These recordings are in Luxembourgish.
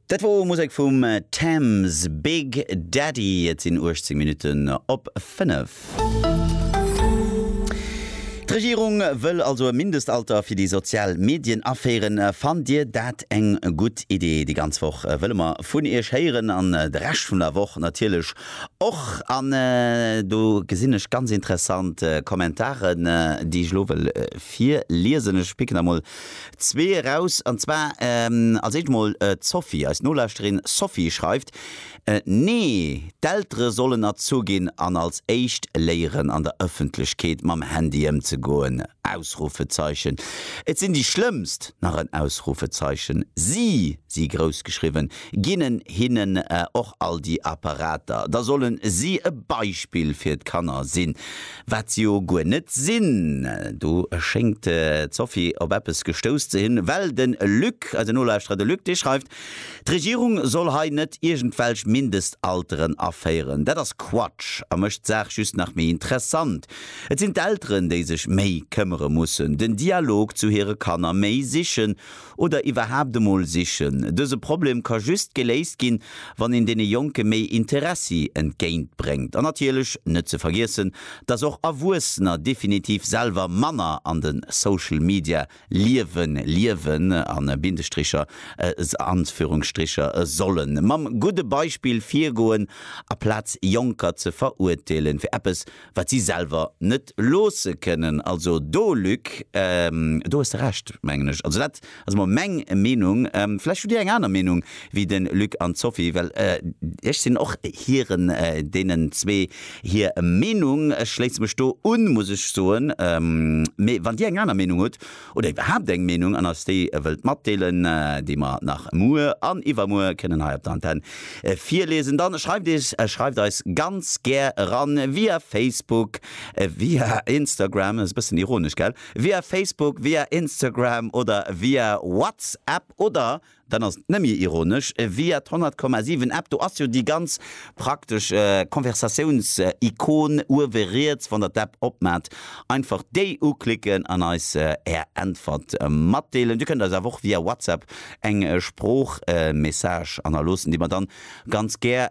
Dat wor Musek vum Tems, Big Daddy. Et sinn 18 Minutten op 5. D'Regierung wëll also e Mindestalter fir déi sozial Medien aféieren. Fannt Dir dat eng gutt Idee? Déi ganz Woch wëlle mer vun Iech héieren an de Rescht vun der Woch natierlech och. An do gesinn ech ganz interessant Kommentaren, déi ech elo wëll virliesen. Ech picken der mol Zwee eraus, an zwar als éischt emol d'Sophie. Eis Nolauschterin Sophie schreift, Nee, d'Eltere sollen erzu ginn an als éischt léieren an der Ëffentlechkeet mam Handy ëmzegoen! Ausrufezeichen. Et sinn déi Schlëmmst! nach en Ausrufezeichen. Si, si grouss geschriwwen, ginnen hinnen och all déi Apparater. Da sollen si e Beispill fir d'Kanner sinn. Wat se jo guer net sinn. Do schéngt d'Sophie op eppes gestouss ze hunn, well de Luc, eise Nolauschterer de Luc, dee schreift, d'Regierung soll hei net iergendwelch Mindestalteren aféieren. Dat ass Quatsch a mécht d'Saach just nach méi interessant. Et sinn d'Elteren, déi sech méi këmmere mussen, den Dialog zu hire Kanner méi sichen Oder iwwerhaapt emol sichen. Dëse Problem ka just geléist ginn, wann een deene Jonke méi Interessi entgéint bréngt. An natierlech net ze vergiessen, dass och Erwuessener definitiv selwer manner an de Social Media Liewen liewen, a Bindestricher, Anführungsstricher, sollen mam gudde Beispill virgoen, aplaz Jonker ze verurteelen fir eppes, wat si selwer net loosse kënnen. Also do, Luc, do hues de Recht, mengen ech. Also dat ass emol meng Meenung. Vläicht hutt Dir eng aner Meenung wéi de Luc an d'Sophie, well ech sinn och hiren, deenen zwee hir Meenung. Ech schléisse mech do un, muss ech soen. Mee wann Dir eng aner Meenung hutt, oder iwwerhaapt eng Meenung an eis déi wëllt matdeelen, déi mer nach muer an iwwermuer kënnen hei op der Antenne virliesen, dann schreift eis, schreift eis ganz gär eran via Facebook, via Instagram, ass e bëssen ironesch, gell, via Facebook, via Instagram oder via WhatsApp oder Dann ass et nemje ironesch via d'Honnertkommasiwen App. Do ass jo déi ganz praktesch Konversatiouns-Ikon uewe riets. Wann der d'App opmaacht, einfach déi uklicken an eis är Äntwert matdeelen. Dir kënnt eis awer och via WhatsApp eng Sproochmessage hannerloossen, déi mer dann ganz gär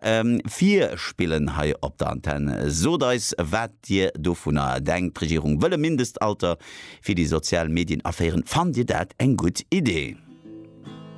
virspillen hei op der Antenn. Sot eis, wat dir dovunner denkt. D'Regierung wëll e Mindestalter fir déi sozial Medien aféieren. Fannt dir dat eng gutt Idee?